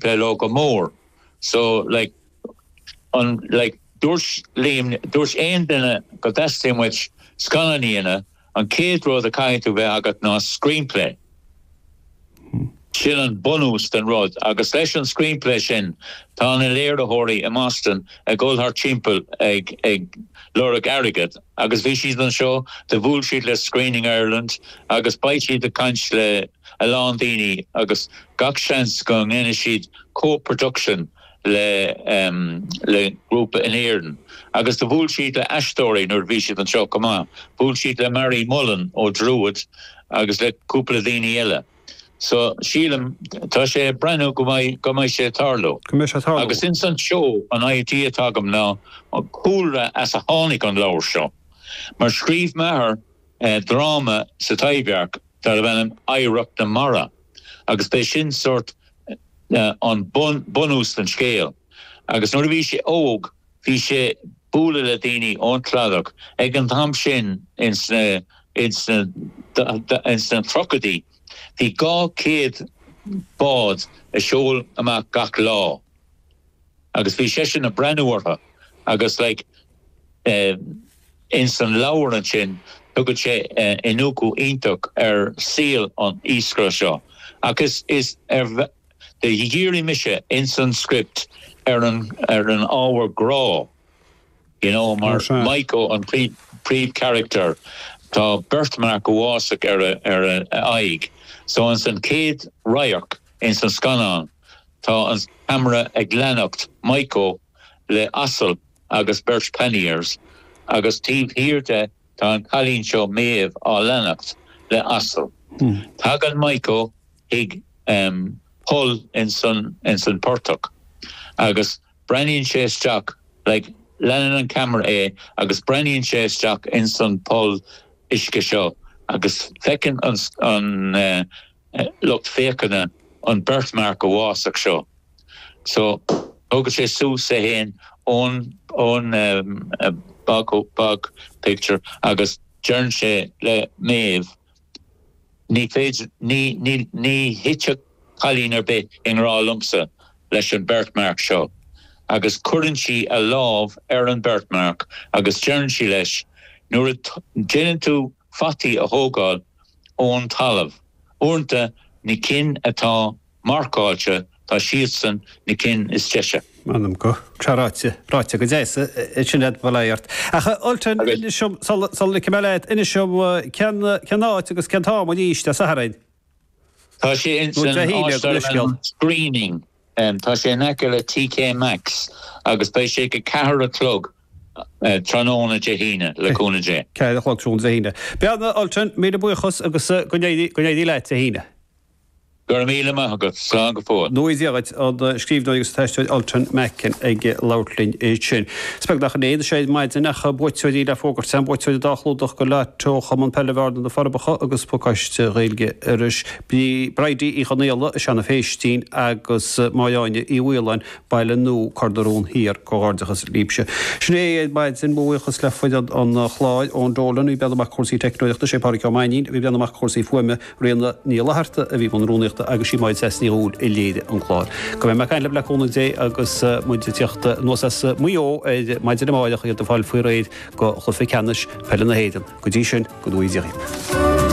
Bhuel ó go mór so, like, an, like, dúirt Liam, dúirt aon duine go dteastaíonn uait scannán a dhéanamh, an chéad rud a chaithfidh tú bheith agat ná screenplay. Sin an bunús den rud agus leis an screenplay sin tá na léiritheoirí i mBoston ag dhul thart timpeall ag, ag lorg airgead agus bhí siad anseo, do bhuail siad le Screening Ireland agus beidh siad ag caint le. a lán daoine agus gach seans go ndéanfaidh siad co-production le grúpa in Éirinn agus do bhuail siad le aisteoirí nuair a bhí siad anseo chomh maith. Bhuail siad le Marie Mullen ó Druid agus le cúpla daoine eile. So sílim, tá sé ag breathnú go mbeidh, go mbeidh sé ag tarlú. Go mbeidh sé ag tarlú. Agus ins an seó, an idea atá agam ná an cúlra as a tháinig an leabhar seo. Mar scríobh m'athair dráma sa Taibhdhearc darb ainm Oidhreacht na Mara agus b'é sin sórt an bunús don scéal agus nuair a bhí sé óg bhí sé bualadh le daoine ón Cladach ag an t-am sin ins na ins na tríochaidí bhí dhá céad bád a seol amach gach lá. Agus bhí seisean a' breathnú ortha agus like eh ins an leabhar ansin tugann sé eh iniúcadh iontach ar saol an iascaire seo ach is is do dhírigh mise ins an script ar an ar an ábhar grá you know Ó mar sea. Mico an príomh príomh character tá birthmark uafásach ar a ar a aghaidh so ins an chéad radharc ins an scannán Tá an ceamara ag leanacht Mico le asal agus beirt panniers agus taobh thiar de tá an cailín seo Méabh á leanacht le asal. Tagann Mico chuig poll ins an portach agus breathnaíonn sé isteach like leanann an ceamara é agus breathnaíonn sé isteach ins an poll uisce seo agus feiceann an lucht féachana an birthmark uafásach seo so. Tógann sé suas é fhéin ó'n bog picture agus deireann sé le Méabh Ní féidir, ní thitfeadh cailín ar bith i ngrá liomsa leis an birthmark seo agus cuireann sí a lámh ar an birthmark agus deireann sí leis Nuair a déanann tú fataí a thógáil, ón talamh. Uaireanta, na cinn atá marcáilte, tá siadsan na cinn is deise. M'anam go. Tá ráite, ráite go deas é sin a'd bail ort. Ach a Ultan, Agus. inis dom, sul a ligfidh mé leat, inis dom cén, cén áit agus cén t-am arís Dé Sathairn? Tá sé ins Nó Dé hAoine, gabh mo leithscéal. Screening. Tá sé in aice le TK Maxx agus beidh sé ag a ceathair a chlog tráthnóna Dé hAoine, le cúnamh Dé. Ceathair a chlog tráthnóna Dé hAoine. Bearna, Ultan, míle buíochas agus go n-éirí leat Dé hAoine. Go raibh míle maith agat. Slán go fóill. Go ngnóthaí Dia dhuit, an scríbhneoir agus an t-aisteoir Ultan Macken ag labhairt linn ansin. Is beag nach in é anois ar maidin ach tá buaiteoirí le fógairt, siad na buaiteoirí dá chlúdach go leáite ó Chumann Peile Bhearna-Na Forbacha agus pacáiste Ghaeilge Iorrais. Bhí Bridie Uí Chonaola as Seanadh Phéistín agus Máire Áine Uí Mhaoláin, Baile Nua, Cor na Rón Thiar. Comhghairdeachas libhse. Sin é ar maidin. Mo bhuíochas le foireann an chláir, Eoin Dolan a bhí ag breathnú amach do chúrsaí teicneolaíochta, is é Pádraig Ó Mainnín a bhí ag breathnú amach do chúrsaí fuaime, Ríona Ní Fhlatharta a bhí i mbun rúnaíochta agus sí Máire Treasa Ní Dhubhghaill a léirigh an clár. Go mbeidh muid ag caint libh le cúnamh Dé agus muid ag teacht anuas as Maigh Eo ar maidin amárach, iad ag fáil faoi réir do Chluiche Ceannais Peile na hÉireann. Go dtí sin, go nuige.